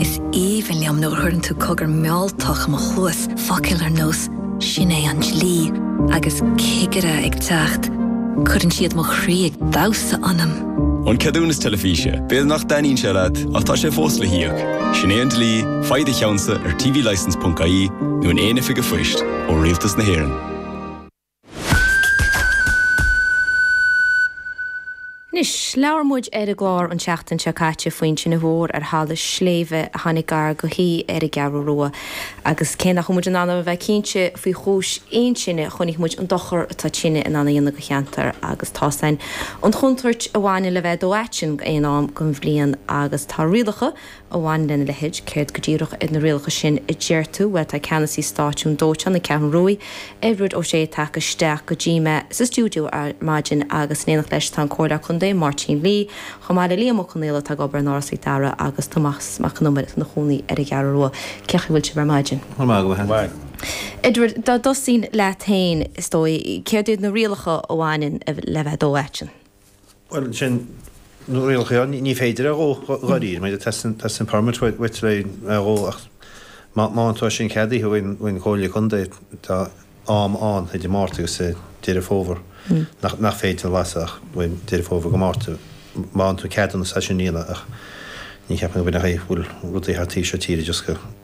Is aoibhinn liom nuair a chuireann tú cogar mealltach i mo chluas, focail ar nós 'Sin é an dlí' agus 'Cigire ag teacht', cuireann siad mo chroí ag damhsa ionam. An ceadúnas teilifíse, b'fhéidir nach dtaitníonn sé leat ach tá sé fós le híoc. Sin é an dlí, faigh do cheannsa ar tvlicence.ie nó in aon oifig a' phoist ó rialtas na hÉireann. Anois, labhair muid ar an gclár an tseachtain seo caite faoin tine mhór ar thalamh sléibhe a tháinig gar go haoi ar an gCeathrú Rua, agus cé nach bhfuil muid in ann a bheith cinnte faoi chúis aon tine, chonaic muid an dochar atá tine in ann a dhéanamh go cheantar agus tá 's againn an chontúirt a bhaineann le bheith ag dó aitinn aon am den bhliain agus tá rialacha a bhaineann lena leithéid, céard go díreach iad na rialacha sin a deir tú? Bhuel, tá ceannasaí stáisiún dóiteáin na Ceathrún Ruaidh, Edward O'Shea tagtha isteach go dtí mé sa stiúideo ar maidin agus in éineacht leis tá an Comhairleoir Contae, Máirtín Lee, chomh maith le Liam Ó Conaola atá ag obair in Áras Mhic Dara agus Tomás Mac an Iomaire atá ina chónaí ar an gCeathrú Rua. Cén chaoi a bhfuil sibh ar maidin? Go raibh maith agat. Edward, dá dtosaínn leat féin, is dóigh, céard iad na rialacha a bhaineann le bheith ag dó aitinn? Bhuel, sin na rialacha, ní féidir é a dhó, dháiríre, teastaíonn permit uait le é a dhó ach má tá sin ceadaithe ag an gComhairle Contae, tá am áirithe idir Márta agus Deireadh Fómhair nach féidir lasadh ach Deireadh Fómhair go Márta, má fhaigheann tú ceadúnas é sin a dhéanamh ach ní cheapaim go mbeadh, bhuel, rudaí thart taobh seo tíre just go.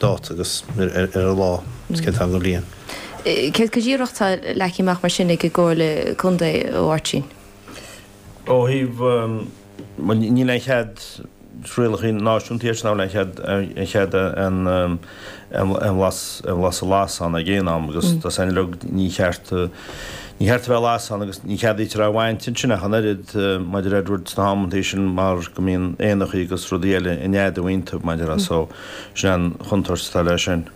dáta agus ar an lá is cén t-am den bhliain. Céard go díreach atá leagtha amach mar sin ag an gComhairle Contae, a Mháirtín? Ó thaobh, bhuel níl aon chead rialacha náisiúnta iad sin níl aon chead, aon chead a, a lasadh, a lasadh a lasadh ag aon am agus tá 's againn uilig ní cheart, ní cheart a bheith á lasadh agus ní cheadaítear é a bhaint ansin ach an oiread mar a deir Edward sna hamantaí sin mar go mbíonn éanachaí agus rudaí eile ag neadú ann mar a déarfá so. Sin é an chontúirt atá leis sin.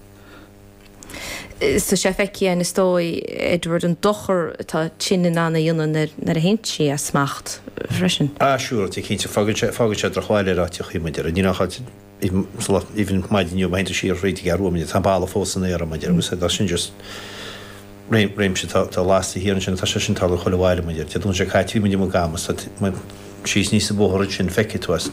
Is tá sé feicthe againn is dóigh, Edward, an dochar atá tine in ann a dhéanamh nuair a théann sí as smacht freisin. Ah sure, tá cinnte, fágann sé, fágann sé drochbhail ar áiteachaí, mar a déarfá, níl aon chall, even sa lá, even maidin inniu má théann tú siar thríd an gCeathrú Rua, tá an boladh fós san aer, mar a déarfá, agus tá sin just réim, réimse atá, atá lasta thiar ansin, tá sé sin tarlaithe chuile bhaile, mar a déarfá, tá sé caite, mar a déarfá, i gCamas, tá, síos aníos an bóthar ansin, feicfidh tú as.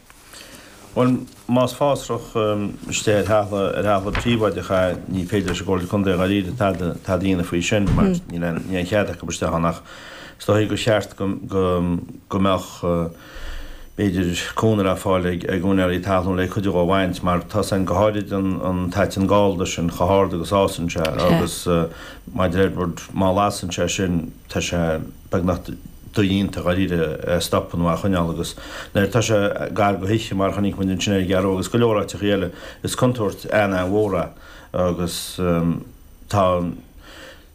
Bhuel, más fásra istigh ar thalamh, ar thalamh príobháideach a ní féidir leis an gComhairle Contae dháiríre tada, tada a dhéanamh faoi sin mar níl aon, níl aon chead acu isteach ann ach is dóichí gur cheart go, go, go mbeadh, b'fhéidir, cúnamh le fáil ag, ag úinéirí talún le cuid dhe a bhaint mar tá 's againn, go háirid an, an t-aiteann gallda sin chomh hard agus a fhásann sé agus mar a deir Edward má lasann sé sin tá sé, beagnach dodhéanta, dháiríre, a stopadh nó a choinneáil agus nuair atá sé gar do thithe, mar a chonaic muid ansin ar an gCeathrú Rua agus go leor áiteachaí eile, is contúirt an-an-mhór é agus tá an,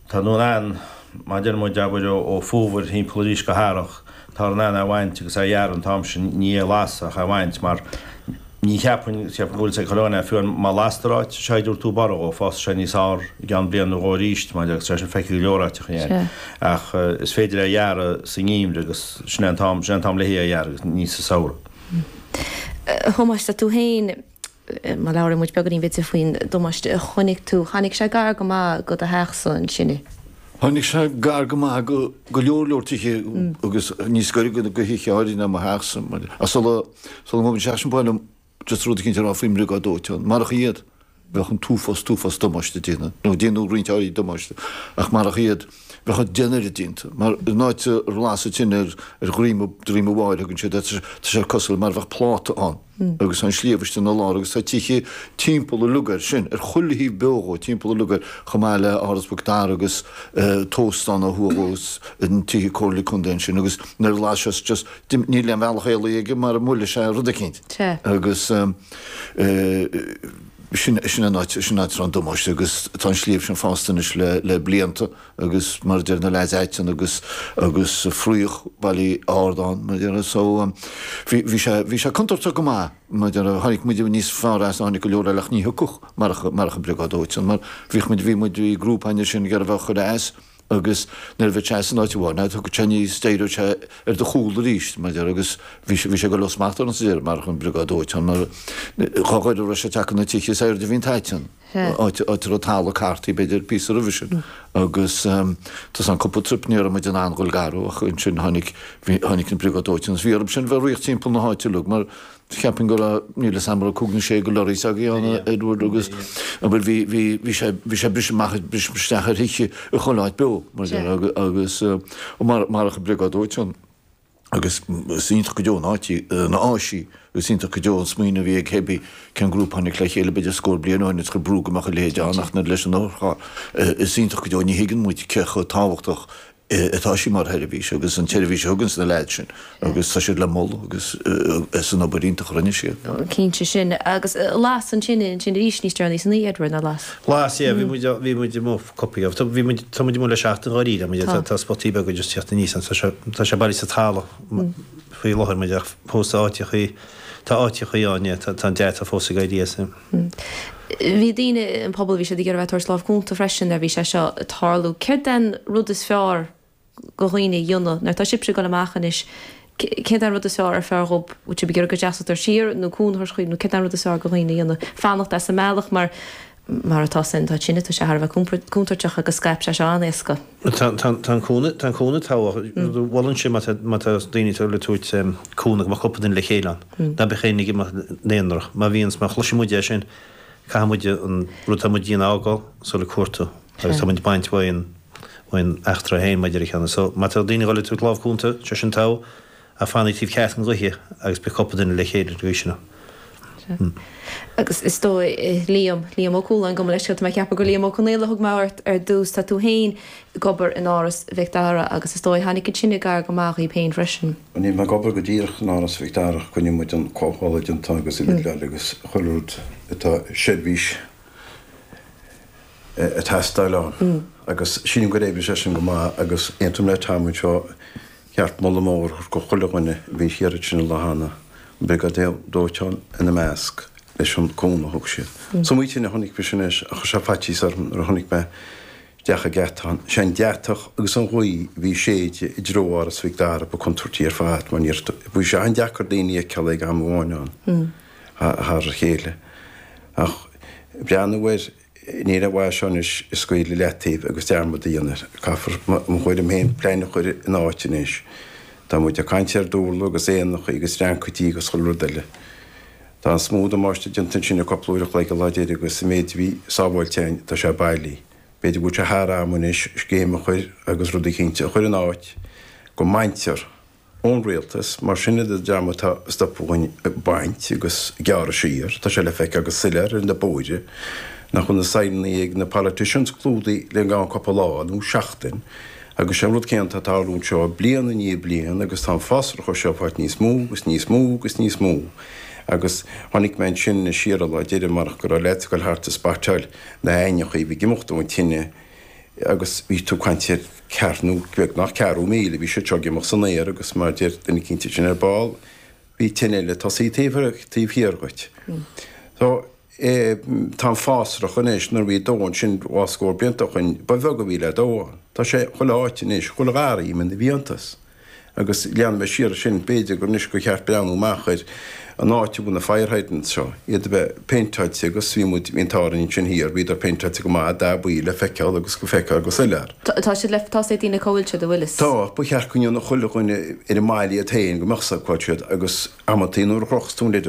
tá tú in ann, mar a deir muid, abair, ó Fómhar thimpeall arís go hEarrach, táthar in ann é a bhaint agus é a ghearradh an t-am sin, ní é a lasadh ach é a bhaint mar. Ní cheapfainn, cheapfainn go bhfuil siad ag cur ann é, fiú má lastar áit, sé an chaoi a dtabharfaidh tú borradh dhó fásfaidh sé níos fhearr i gceann bliain nó dhó aríst, mar a déarfá agus tá sé feicthe go leor áiteacha in Éirinn. Ach is féidir é a ghearradh sa nGeimhreadh agus sin é an t-am, sin é an t-am le hé a ghearradh agus ní sa Samhradh. A Thomáis, tá tú féin, má labhraíonn muid beagáinín b'fhéidir faoin damáiste a chonaic tú, tháinig sé gar go maith go do theachsa ansin i. Tháinig sé gar go maith do go leor leor tithe agus níos gaire do do thithe áirithe ná mo theachsa mar a sula sula bhfuair sé sin bhuel just rud éicint a rá faoin mbriogáid dóiteáin, marach iad, bheadh an t-uafás t-uafás damáiste déanta, nó déanadh roinnt áirithe damáiste, ach marach iad, bheadh an dionaire déanta mar an áit ar lasadh tine ar ar dhroim a dhroim a bháirr thugann siad air, tá sé cosúil mar a bheadh pláta ann. agus an sliabh istigh ina lár agus tá tithe timpeall an lugair sin, ar chuile thaobh beo dhó, timpeall an lugair, chomh maith le Áras Mhic Dara agus an t-óstán ó thuaidh dhó is tithe comhairle contae ansin agus nuair a las sé is just, níl aon bhealach éalaithe aige mara mbuailfidh sé rud eicínt agus sin an áit, sin an áit a raibh an damáiste agus tá an sliabh sin fásta anois le blianta. agus mar a deir na leaids aiteann agus agus fraoch bailí ard ann mar a deir so bhí bhí sé bhí sé contúirteach go maith mar a deir tháinig muid níos fearr as tháinig go leor eile ach ní thiocfadh marach marach an briogáid dóiteáin mar bhíodh muid bhí muid i ngrúpaí ansin ag iarraidh bheith á chur as agus nuair a bhí sé as in áit amháin ná thug sé ní steireoidh sé ar do chúl arís mar a deir agus bhí sé bhí sé ag goil ó smacht orainn sa deireadh marach an briogáid dóiteáin mar dhá ghaire a raibh sé ag teacht na tithe is airde a bhí an t-aiteann. Sea. áit a raibh talamh cartaithe, b'fhéidir, píosa roimhe sin. Agus tar éis an cúpla trip, ní raibh muid in ann dhul gar dhó, ach ansin tháinig, tháinig an Briogáid Dóiteáin, agus bhí orthu sin bheith ag rith timpeall na háite uilig, mar cheapfainn go raibh, níl 'fhios a'm, go raibh cúig nó sé de lorries againn ann, a Edward, agus, a' bhfuil, bhí, bhí, bhí sé, bhí sé briseadh amach, briseadh isteach ar thithe i chuile áit beo, mar a déarfá, agus, mar, marach an Briogáid Dóiteáin. Agus is iontach go deo an áis í, an áis í, agus iontach go deo an smaoineamh a bhí ag cibé cén grúpa a tháinig le chéile b'fhéidir scór bliain ó shin agus chuir brú go mbeadh a leithéid ann, ach nuair, leis an urchar, is iontach go deo, ní thuigeann muid cé chomh tábhachtach atá sí mar sheirbhís agus an tseirbhís a thuganns na leaids sin agus tá siad le moladh agus as an obair iontach a rinne siad. Cinnte, sin agus las ansin, ansin arís níos deireanaí san oíche, Edward, nár las? Las, yeah, bhí muid, bhí muid amuigh. cúpla oíche. Tá muid amuigh le seachtain dháiríre, tá muid, tá, tá spotaí beaga just ag teacht aníos ann, tá sé, tá sé bailithe sa talamh faoi láthair muid ach fós tá áiteachaí, tá áiteachaí ann, yeah, tá, tá an deatach fós ag éirí as, yeah. Bhí daoine, an pobal, bhí siad ag iarraidh bheith ag tabhairt lámh chúnta freisin nuair a bhí sé seo ag tarlú. Céard é an rud is fearr go dhaoine a dhéanamh, nuair atá sibse ag dul amach anois, céard é an rud is fearr is fearr dhóibh, bhfuil sibh ag iarraidh go seasfaidís siar, nó cúnamh a thabhairt dhaoibh, nó céard é an rud is fearr go dhaoine a dhéanamh, fanacht as an mbealach, mar, mar atá sin, tá tine, tá sé thar a bheith contúirteach agus scaip sé seo go han-éasca. Tá an cúnamh, tá an cúnamh togha, ach molann sé má tá, má tá daoine ag dul ag tabhairt cúnamh go mbeadh cúpla duine le chéile ann, nach mbeadh éinne ag imeacht ina n-aonraic, má bhíonns, má chloiseann muide é sin, caithfidh muide an rud atá muid a dhéanamh a fhágáil le dhul ag cuartú, agus tá muid ag baint uaidh an. bhaint, an eachtra a bhfuil muide air cheana. So, má tá daoine ag dhul ag tabhairt lámh cúnta, sé sin togha, ach fanaigí taobh ceart na gaoithe agus beidh cúpla duine le chéile ar an gcaoi sin. Sea. Agus is dóigh, Liam, Liam Ó Cualáin, gabh mo leithscéal, tá mé ag ceapadh gur Liam Ó Conaola a thug mé ort ar dtús, tá tú féin ag obair in Áras Mhic Dara agus, is dóigh, tháinig an tine gar go maith dhaoibh féin freisin. Níl mé ag obair go díreach in Áras Mhic Dara ach coinníonn muid an comhoibriú ag an t-am agus an Lidl agus chuile rud atá seirbhís. atá ag teastáil ann. Agus sílim gur oibrigh sé sin go maith agus aontaím le Tom anseo, ba cheart moladh mór a thabhairt go chuile dhuine a bhí ag iarraidh sin a dhéanamh, an Briogáid Dóiteáin ina measc, leis an cúnamh a thug siad. Sa mBriotáin a chonaic mé sin anois ach chuir sé faitíos orm nuair a chonaic mé isteach ag geata ann. Is é an deatach agus an ghaoth a bhí ag séideadh i dtreo Áras Mhic Dara ba contúirtí ar fad mar bhí sé an-deacair daoine a fheiceáil ag am amháin ann thar a chéile. Ach breathnú ar. Níorbh fhearr seo anois a scaoileadh i leataobh agus dearmad a dhéanamh air. Caithfear, i mo thuairim féin, plean a chur in áit anois. Tá muid ag caint ar dúrla agus éanachaí agus dreancaidí agus chuile rud eile. Tá an smúid damáiste déanta ansin le cupla uair a chloig a laghad air agus sa méid a bhí sábháilte ann tá sé bailí. B'fhéidir go bhfuil sé thar am anois scéim a chur agus rudaí cinnte a chur in áit go mbaintear ón rialtas, mar sin idir dream atá ag stopadh an bhaint agus ag gearradh siar, tá sé le feiceáil go soiléir ar na bóithre nach mbeidh na saighneanna ag na politicians clúdaithe i gceann cúpla lá nó seachtain agus sé'n rud céanna atá ag tarlú anseo bliain i ndiaidh bliain agus tá an fásrach seo ag fáilt níos mó agus níos mó agus níos mó agus chonaic mé ansin siar an lá deiridh marach go raibh leaids ag gabháil thart ag batráil na haibhinní a bhí ag imeacht ón tine agus bhí tú ag caint ar ceathrú nó beagnach ceathrú míle, bhí siad seo ag imeacht san aer agus mar a deir duine eicínt ansin ar ball, bhí tine eile ag tosú taobh thiar dhuit. So, tá an fásrach anois, nuair a bhí dó ansin dhá scór blianta ó shoin, ba bheag a bhí le dó ann. Tá sé chuile áit anois, chuile gharraí, imithe ina bhfiántas. Agus leanfaidh mé siar as sin, b'fhéidir gur anois gur cheart breathnú amach ar an áit a bhfuil na fire hydrants seo, iad a bheith péinteáilte agus bhí muid, bhí an t-ádh orainn ansin thiar, bhíodar péinteáilte go maith, dath buí le feiceáil agus go bhfeictear go soiléir. Tá siad le, tá, a fhios ag daoine cá bhfuil siad a Willis? Tá, ba cheart go ndéanfadh chuile dhuine ar an mbaile iad féin, go mbeadh a fhios cá bhfuil siad, agus amanntaí nuair a chrochas tú an lid,